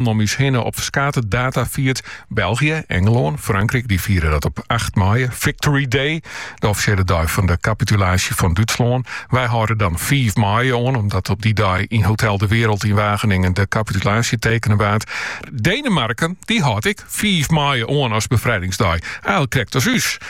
Lannen om ús hinne op ferskate data fierd. België, Engelân, Frankryk dy fiere dat op 8 maaie, Victory Day, de offisjele dei fan de kapitulaasje fan Dútslân. Wy hâlde dan 5 maaie oan, omdat op dy dei yn Hotel de Wereld yn Wageningen de kapitulaasje tekene waard. Denemarken dy hâldt ek 5 maaie oan as befrijdingsdei, al krekt as ús.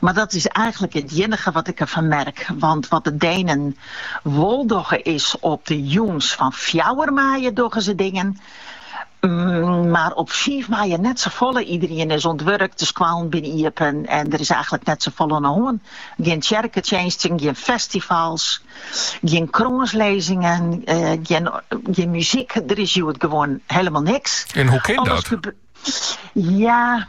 Mar dat is eigenlik it iennige wat ik derfan merk, want wat de Denen wol dogge is op de jûn fan fjouwer maaie dogge se dingen, mar op fiif maaie net safolle. Iederien is oan it wurk, de skoallen binne iepen en der is eigenlik net safolle oan de hân. Gjin tsjerketsjinsten, gjin festivals, gjin krânslizzingen, gjin muzyk, der is hjoed gewoan hielendal niks. En hoe kin dat? Ja.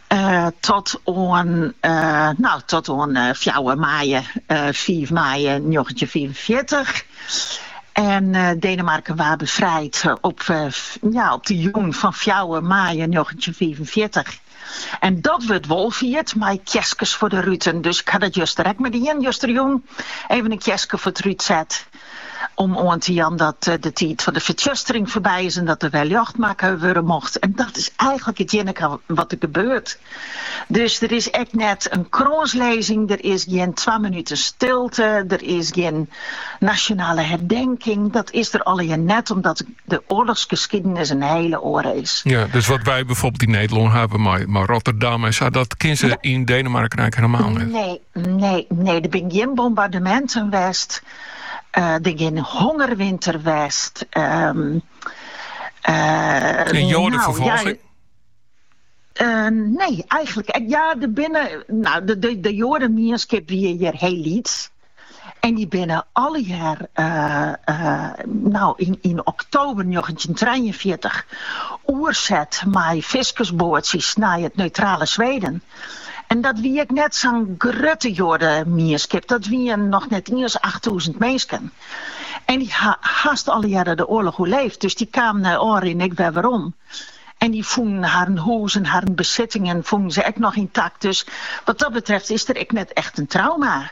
Tot oan, no, tot oan fjouwer maaie, fiif maaie, njoggentjinhûndertfiifenfjirtich. En Denemarken waard befrijd op, ja, op de jûn fan fjouwer maaie njoggentjinhûndertfiifenfjirtich. En dat wurdt wol fierd mei kjeskes foar de ruten. Dus ik ha dat juster ek mar dien, juster jûn even in kjeske foar it rút set. Om oan te jaan dat de tiid fan de fertsjustering foarby is en dat der wer ljocht makke wurde mocht. En dat is eigenlik it iennige wat der gebeurt. Dus der is ek net in krânslizzing, der is gjin twa minuten stilte, der is gjin nasjonale herdenking. Dat is der allegear net omdat de oarlochsgeskiedenis in hiele oare is. Ja, dus wat wy bygelyks yn Nederlân hawwe, mei, mei Rotterdam en sa, dat kenne se yn Denemarken eigenlik hielendal net. Nee, Nee, nee, der binne gjin bombardeminten west. Eh, der gjin hongerwinter west. Ehm, eh, en joadeferfolging? Eh, nee, eigenlik. Eh, ja, der binne. No, de, de, de joademienskip wie hjir hiel lyts. En dy binne allegear, eh, eh, no yn, yn oktober 1943, oerset mei fiskersboatsjes nei it neutrale Sweden. En dat wie ek net sa'n grutte joademienskip, dat wiene noch net iens achttûzen minsken. En dy ha hast allegearre de oarloch oerlibbe, dus dy kamen nei ôfrin ek wer werom. En dy fûnen harren hûs en harren besittingen fûnen se ek noch yntakt, dus wat dat betreft is der ek net echt in trauma.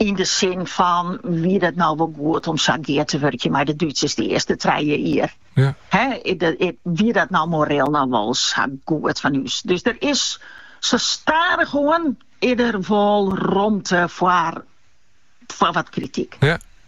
Yn de sin fan, wie dat no wol goed om sa gear te wurkjen mei de Dútsers dy earste trije jier? Ja. Hè, wie dat no moreel no wol sa goed fan ús? Dus der is sa stadichoan is der wol romte foar wat krityk. Ja.